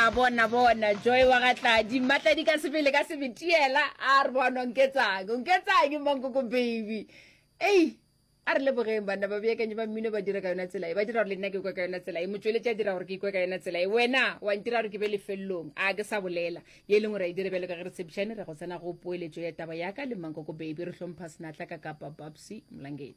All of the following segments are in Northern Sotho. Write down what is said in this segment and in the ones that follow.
a bona bona joy wa ga tladi mmatladi ka sebele ka sebetiela a re bona o nketsang o nketsang mankoko baby ei a re lebogeng banna ba beakanyo ba mmino ba dira ka yona tsela e ba dira gore le nna ke kwa ka yona tsela e motsweletši a dira gore ke ikwe ka yona tsela e wena wa ntira gore ke be lefelelong a ke sa bolela ye e leng gore a e dire bjalo ka ge re tshepišane re go tsena go poeletšo ya taba yaka le mankoko baby re hlompha senatla ka kapa babsy molangeng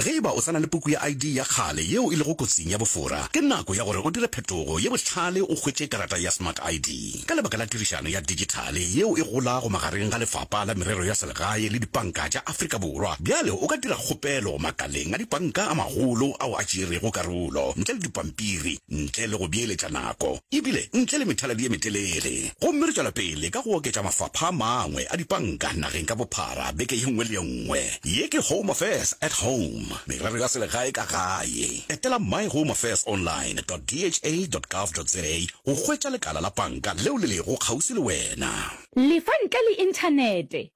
Ge e ba o sa na le puku ya ID ya kgale yeo e lego kotsing ya bofora, ke nako ya gore o dire phetogo ye bohlale o hwetše karata ya Smart ID. Ka lebaka la tirišano ya dijithale yeo e golago magareng ga Lefapa la Merero ya Selegae le dipanka tša Afrika Borwa, bjale o ka dira kgopelo makaleng a dipanka a magolo ao a tšeerego karolo ntle le dipampiri. ntle le go beeletša nako e bile ntle le methaladi ye metelele. Gomme re tšwela pele ka go oketša mafapha a mangwe a dipanka nageng ka bophara beke ye nngwe le ye nngwe. Ye ke Home Affairs at Home, Merero ya Selegae ka Gae. Etela myhomeaffairsonline dot dha dot gov dot za go hwetša lekala la panka leo le lego kgauswi le wena. Lefa ntle le Inthanete,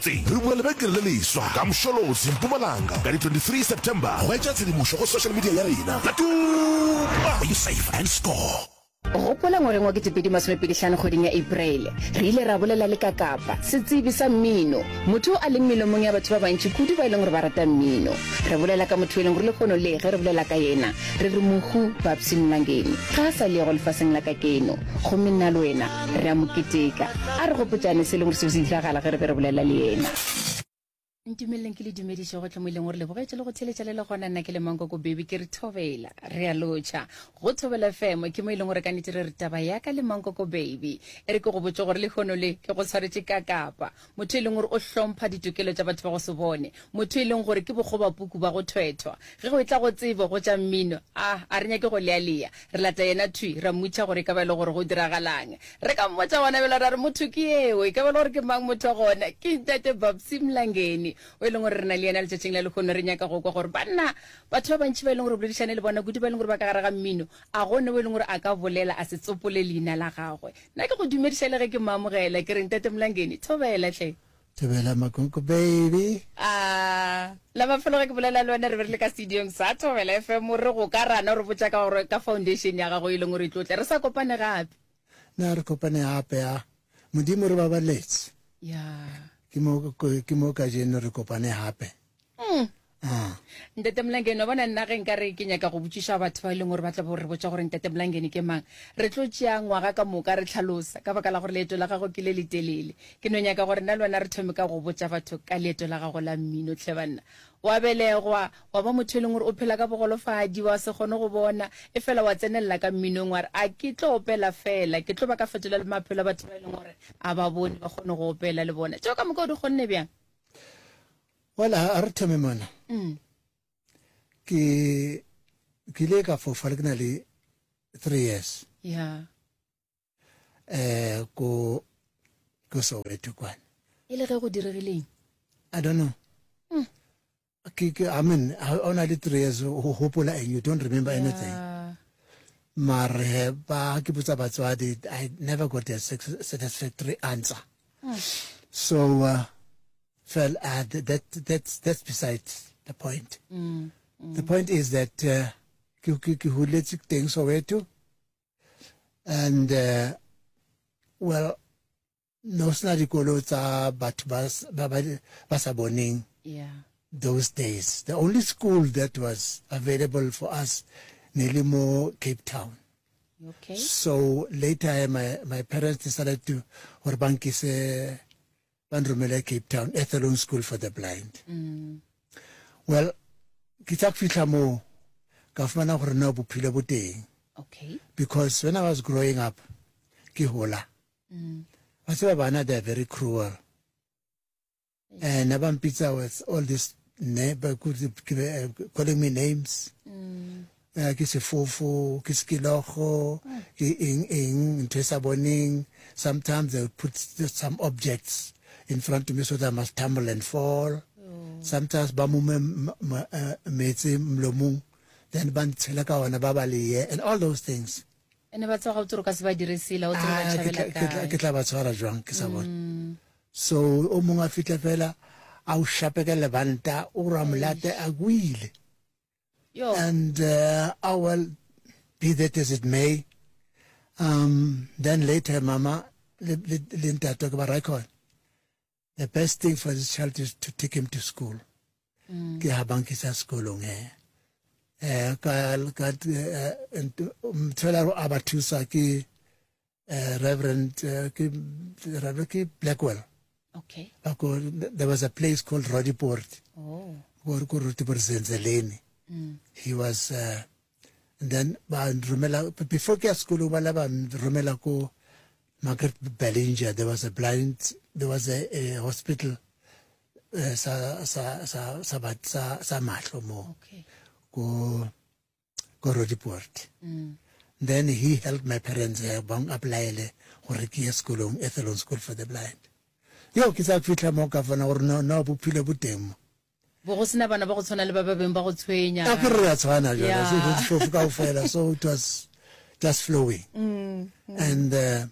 Tse. Re bula lebenkele le leswa ka Msholozi, Mpumalanga, ka di 23 September. Hwetša tshedimošo go social media ya rena ka Tuma! Be safe and score! Gopola ngwageng wa 2025 kgweding ya Apereile, re ile ra bolela le Kakapa, setsebi sa mmino, motho yo a leng melomong ya batho ba bantši kudu ba e leng gore ba rata mmino. Re bolela ka motho yo e leng gore lehono le ge re bolela ka yena re re Mohu Babsy Mlangeni, ga a sa le yo go lefaseng la kakeno. Gomme nna le wena re a Mo keteka. A re gopotšane se e leng gore seo se diragala ge re be re bolela le Yena. Ntumeleleng ke le dumediše gohle mo e leng gore le bogetše le go theletša le le gona. Nna ke le Mankoko Beby, ke re thobela. Re a lotšha. Go Thobela FM, ke mo e leng gore ka nnete re re taba ya ka le Mankoko Beby. E re ke go botše gore lehono le ke go tshwaretše ka kapa. motho e leng gore o hlompha ditokelo tša batho ba go se bone, motho e leng gore ke bokgobapuku ba go thwethwa. Ge go etla go tsebo, go tša mmino, a a re nyake go lealea. Re lata yena thwi, ra mmutša gore e ka ba e le gore go diragalang. Re ka mmotša gona bjalo ra re, Motho ke yeo? E ka ba e le gore ke mang motho gona? Ke Ntate Babsy Mlangeni, o e leng gore re na le yena letšatšing la lehono. Re nyaka go kwa gore, banna, batho ba bantši ba e leng gore re boledišane le bona, kudu ba e leng gore ba ka gare ga mmino, a go na o e leng gore a ka bolela a se tsopole leina la gagwe. Na ke go dumediša le ge ke mmamogela, ke re, Ntate Mlangeni, thobela tle. Thobela Makunku baby. A la mafelo ge ke bolela le wena re be re le ka studiong sa Thobela FM o re go ka rana o re botša ka gore ka foundation ya gago e leng o re tlotle re sa kopane gape. Na re kopane gape ya Modimo re babaletse. Yeah. Ke mo ke mo ka jeno re kopane gape. ntate molangeni wa bona nna ge nka re ke nyaka go botšiša batho ba e leng gore ba tla bo re botsa gore ntate molangeni ke mang re tlo tšea ngwaga ka moka re tlhalosa ka baka la gore leeto la gago ke le le telele ke no nyaka gore nna le wena re thome ka go botsa batho ka leeto la gago la mmino tlhe banna wa belegwa wa ba motho e leng gore o phela ka bogolofadi wa se kgone go bona e fela wa tsenelela ka mminong wa re a ke tlo opela fela ke tlo ba ka fetola le maphelo a batho ba e leng gore a ba bone ba kgone go opela le bona tšeo ka moka o di kgonne bjang Wala a re thome mona. Mm. Ke ke ile ka fofa le ke na le 3 years. Yeah. Eh ko ko Soweto kwana. E le ge go diregileng? I don't know. Mm. ke ke i mean ha o na le 3 years o hopola and you don't remember yeah. anything mare ba ke botsa batswadi i never got a satisfactory answer hmm. so uh, fell uh, that that's that's beside the point mm, mm. the point is that uh, ke ke ke huletse teng soweto and uh, well no sena dikolo tsa batho ba ba ba sa boneng yeah those days the only school that was available for us nearly more cape town okay so later my my parents decided to gore ba nkise ba nromele cape town ethelon school for the blind mm. well ke tsa fitlha moo ka fumana gore na bophelo bo teng okay because when i was growing up ke hola mm. wa tseba bana they're very cruel and na ba mpitsa with all this ne ba eh, calling me names mm. eh, ke sefofu ke sekilogo mm. ke eng eng ntho e sa boneng sometimes they put some objects in front of me so that I must tumble and fall oh. sometimes ba mume eh, metse mlomong then ba ntshela ka ona ba ba leye and all those things ba ne ba tswa ga o tsere ka se ba dire sela o tsere ba ah, tšhabela kae ke tla ba tshwara jwang ke sa bone mm. so o mongwe a fitlhe fela a o shape ka lebanta o ra molate a kwile and uh, oh well be that as it may um then later mama le ntate ke ba raikon the best thing for this child is to take him to school mm. ke ha bankisa sekolong he eh ka ka mtshela eh, um, a ba thusa ke eh, reverend eh, ke reverend ke blackwell okay ako there was a place called rodiport oh ko ko rodiport zenzeleni mm. he was uh, then ba romela before ke ya sekolo ba la ba romela ko market bellinger there was a blind there was a, a hospital uh, sa sa sa sa bat sa sa mahlo mo okay. ko ko rodiport mm. then he helped my parents uh, bang applyele gore ke ye sekolong ethelon school for the blind yo ke sa fitlha mo ka fana gore no no bophelo bo teng mo Bo go se na bana ba go tshwana le ba ba beng ba go tshwenya. A ke re re a tshwana jwale, ga se dijo tse fofu kaofela, so it was just flowing. And uh,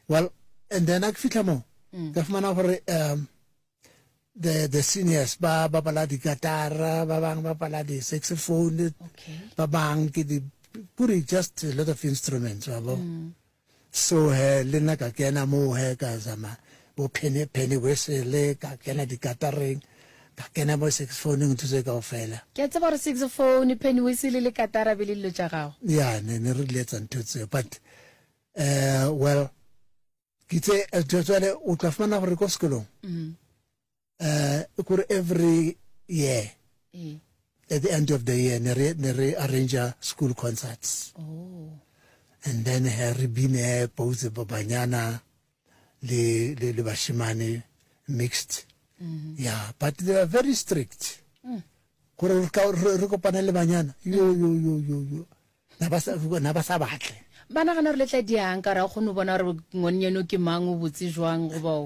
well, and then a ke fihla moo, ka fumana gore um, the, the seniors ba bapala dikatara, ba bang ba bapala di-saxophone, ba bang ke di, kuri just a lot of instruments, wa bo. So he le nna ka kena moo he ka zama bo penny penny whistle ka kena dikatareng ka kena mo saxophone ntho tse kaofela. Ke a tseba gore saxophone, penny whistle le katara be le dilo tša gago. Ya ne ne re letsa ntho tseo but eh well ke tse eh, jwale o tla fumana gore ko sekolong uh, kore every year mm. at the end of the year ne re ne re arrange school concerts oh. and then he re bine pause ba banyana le le le bashimane mixed mm -hmm. yeah but they are very strict mm. gore re kopane le banyana yo yo yo yo yo na ba sa na ba sa batle ba nagana gore le tla diang ka ra kgone go bona gore ngwane eno ke mang o botse jwang go bao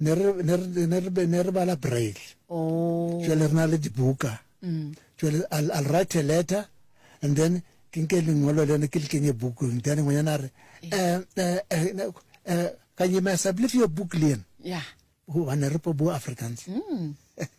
ne re ne re ne re be- ne re bala braille Oh. jale re na le dibuka Mm. jale I'll, I'll write a letter and then ke nke lengolo leno ke le kenye bukong then ngwenyana a re "Eh, eh, eh, ne- eh, kanyemasa believe your book lean Yeah. hobane re po bo africans Mm.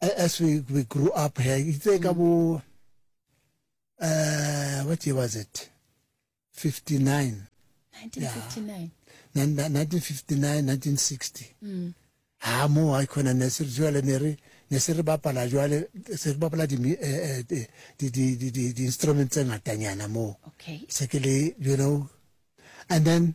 as we, we grew up here itse ka bo uh, what year was it 59 1959 1959 1960 mm. ha mo ha khona ne se jwale ne re ne se re bapala jwale se re bapala di eh, eh, di di di di di instruments tse ngatanyana mo okay se ke le you know and then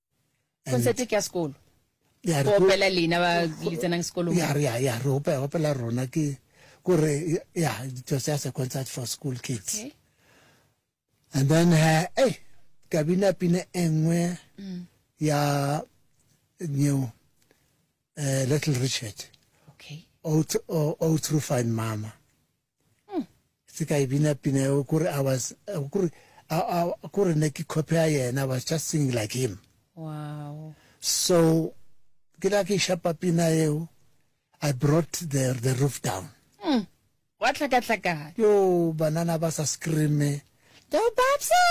concert ke ya sekolo go opela lena ba le tsenang sekolong ya re ya re opela opela rona ke gore ya it was just a concert for school kids okay. and then ha eh ka bina pina engwe mm. ya new uh, eh, little richard okay oh, to, oh, oh through fine mama mm. se ka e bina pina eo kore i was kore kore ne ke copy ya yena was just singing like him wow so ke la ke shapa pina eo i brought the the roof down mm. wa tlhakatlhakana yo banana ba sa screame yo babsa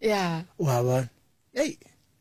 yeah wa bona hey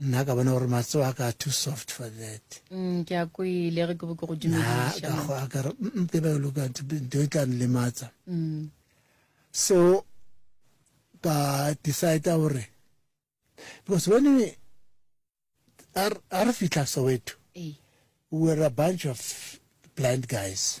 nna ka bona gore matso a ka too soft for that mm, ke a kwele ge ke bo ke go dumediša ke ba loka do tla nlematsa mm. so ka decide gore because when we are are fitla soweto we were a bunch of blind guys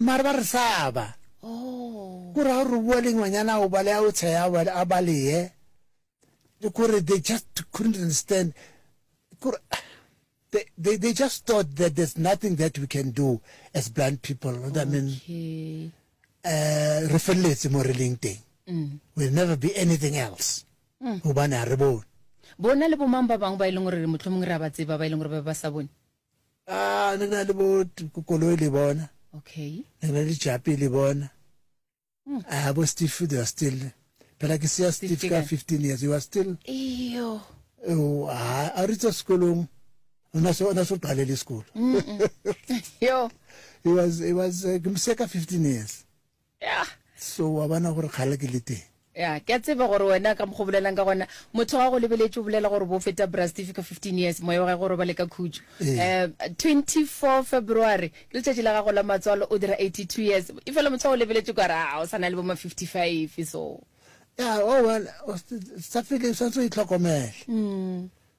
Mare ba re saba. Ko ra gore bua le ngwanyana ao bale ao tsheya a baleye. Ko re they just couldn't understand. Ko they, they, they just thought that there's nothing that we can do as blind people. Okay. I mean, uh, re feleletse mo re leng teng. Mm. We'll never be anything else. Mm. Hobane ha re bone. Bona le bomang ba bangwe ba e leng gore motlhomong re a ba tseba ba e leng gore ba ba sa bone? Ah, ne na le bo koloi le bona. Okay. Ne na le japi le bona. Hmm. Ah, bo Steve they are still. Pela ke siya Steve ka 15 years you are still. Iyo. Oh, ah, a ritsa sekolong. Ona so ona so qale le sekolo. Yo. He was he was uh, ke msiya ka 15 years. Yeah. So wa bona gore kgale ke le teng. ya ke a tseba gore wena ka mokgo bolelang ka gona motho wa go lebeletše o bolela gore bo feta brastifi ka 15 years moya wa gage gore ba le ka khutšo Ee. um 24 february ke letšatši la gago la matswalo o dira 82 years e fela motho wa go lebeletše kware a o sa na le boma 55 so ya oh well o s- sa fele o santse o itlhokomele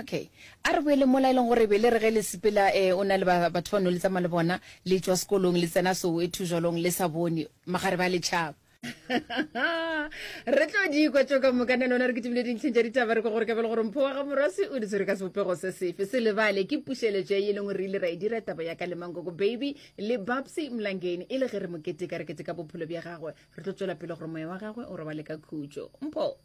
Okay. A re boele mola e leng gore be le re ge le sepela eh, o na le ba- batho ba no le tsamaya le bona le tšwa sekolong le tsena soweto jwalong le sa bone magare ba letšhaba re tlo di kwa tšo ka moka nna lona re kitimile dintlheng tša ditaba re kwa gore ka bele gore mpho wa ga morwasi o di tshwere ka sebopego se sefe se lebale ke pušeletšo ya e leng gore re ile ra e dira taba ya ka le mankoko baby le babsy mlangeni e le ge re mo keteka re keteka bophelo bja gagwe re tlo tšwela pele gore moya wa gagwe o robale ka khutšo mpho